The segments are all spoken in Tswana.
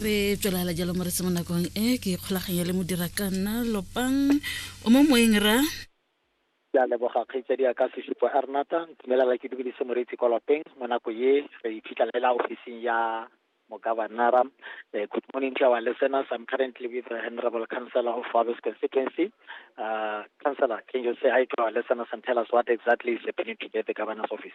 re tswelela jalo mo re se mo nakong e ke ikgolaganya le modira ka nna lopang o mo moeng ra ke a leboga kgaitsadi ya ka sesupo a renata ntumelela ke dumedise moreetsi kwa lapeng mo nako ye re iphitlhelela ofising ya mogabanara um eh, good morning to our listeners i'm currently with the honorable councillor of Wabes constituency uh, councillor can you say hi to our listeners and tell us what exactly is happening today at the governor's office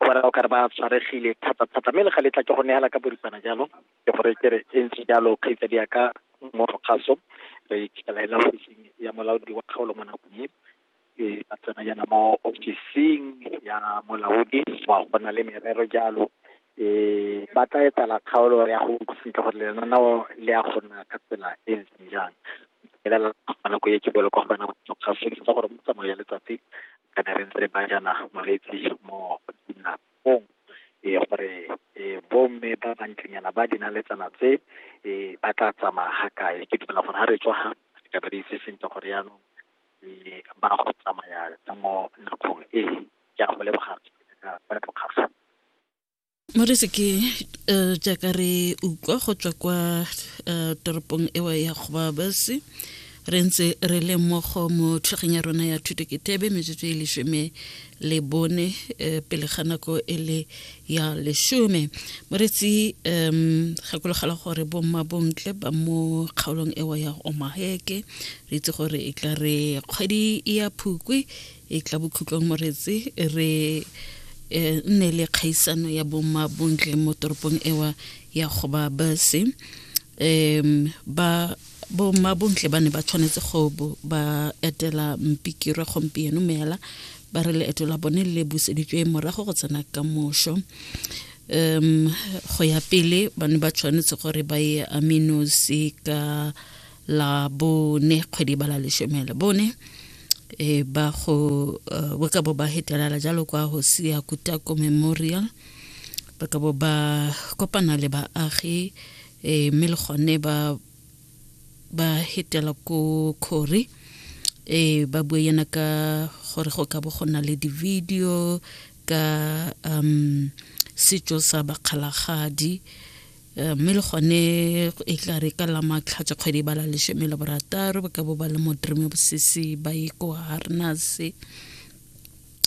o ba o ka re ba tshwaregile thata-thata mme le ga letla ke go neela ka boripana jalo ke gore ke re e ntse jalo kgaitsa di yaka mmogo gaso re ikalela ofising ya molaodi wa kgaolo mo nakong e e ba tsena yana mo ofising ya molaodi wa go na le merero jalo e ba tla etela kgaolo ya go utlwa sentle gore lenaneo le ya go nna ka tsela e ntseng jang elela nako e ke bolo kwa go bana ga fedisa gore mo tsamayo ya letsatsi kana re ntse re ba jana moreetsi mo dinakong e gore bomme ba bantlenyana ba dinaletsana tse e ba tla tsamaya ga kae ke dumela gore ga re tswa ga re ka ba re itse sentle gore yaanong ba go tsamaya mo nakong e ke a go leboga ka ka tlokgatlha Morisi ke uh, jaaka re utlwa go tswa kwa uh, toropong ewa ya kgobabasi re ntse re le mmogo mo tlhogeng ya rona ya thuto ke tebe metsotso e lesome le bone um pele ga nako e le ya lesome moretsi um gakologela gore bomma bontle ba mo kgaolong ewa ya omaheke re itse gore e tla re kgwedi ya phukwe e tla bokhutlong moretse re e nne le kgaisano ya bomma bontle mo toropong ewa ya goba base um ba bomma bontle ba ne ba tshwanetse go ba etela mpikirwa gompieno meela ba re leeto la bone le buseditswe morago go tsena ka mošo um go ya pele ba ne ba tshwanetse gore ba ye aminosi ka la bone kgwedi ba la lesome le bone e ba go uh, ba ka bo ba hetelala jalo kwa go sia kutako memorial ba ka bo ba kopana le baagi e mme le gone ba ba hetela ko khori e ba bue yana ka gore go ka bo go na le di-video ka um setso sa bakgalagadi Eh, mme le gone e tla re ka la matlhatsa kgwedi ba la lesome le borataro ba ka bo ba le modreme bosese ba ye ko harnase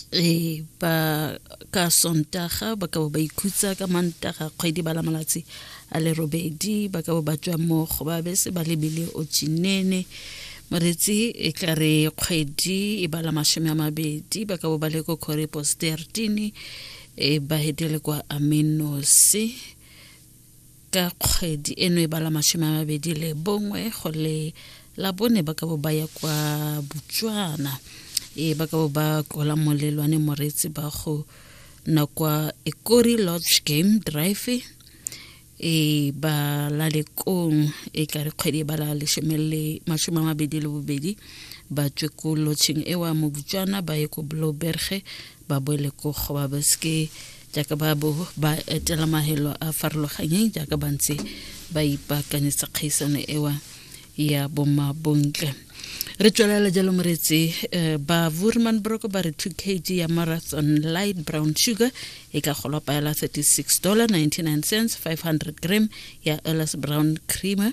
e ba ka sontaga ba ka bo ba ikhutsa ka mantaga kgwedi ba la malatsi a le robedi ba ka bo ba tswa mo go ba bese ba lebile o tsinene moretsi e tla re kgwedi e ba la masome a mabedi ba ka bo ba le ko corepos tertine e ba hetele kwa amenosi ka kgwedi eno e bala mashome a mabedi le bongwe go le la bone ba ka bo ba ya kwa botswana e ba ka bo ba kola molelwane moreetsi ba go na kwa ekori lodge game drive e ba la lekong e ka re kgwedi e ba la leshome le mashome a mabedi le bobedi ba tswe ko lotšheng ewa mo botswana ba ye ko bloberge ba boele ko go ba beske jaaka ba bo ba etela mahelo a farologanyeng jaaka ba ntse ba ipaakanyetsa kgaisano ewa ya bomabontle re tswelela jalo moretsi eh, ba vurman broko ba re 2 kg ya marathon light brown sugar e ka golwa paela 36 dollar 99 cents 500 gram ya ellis brown creamer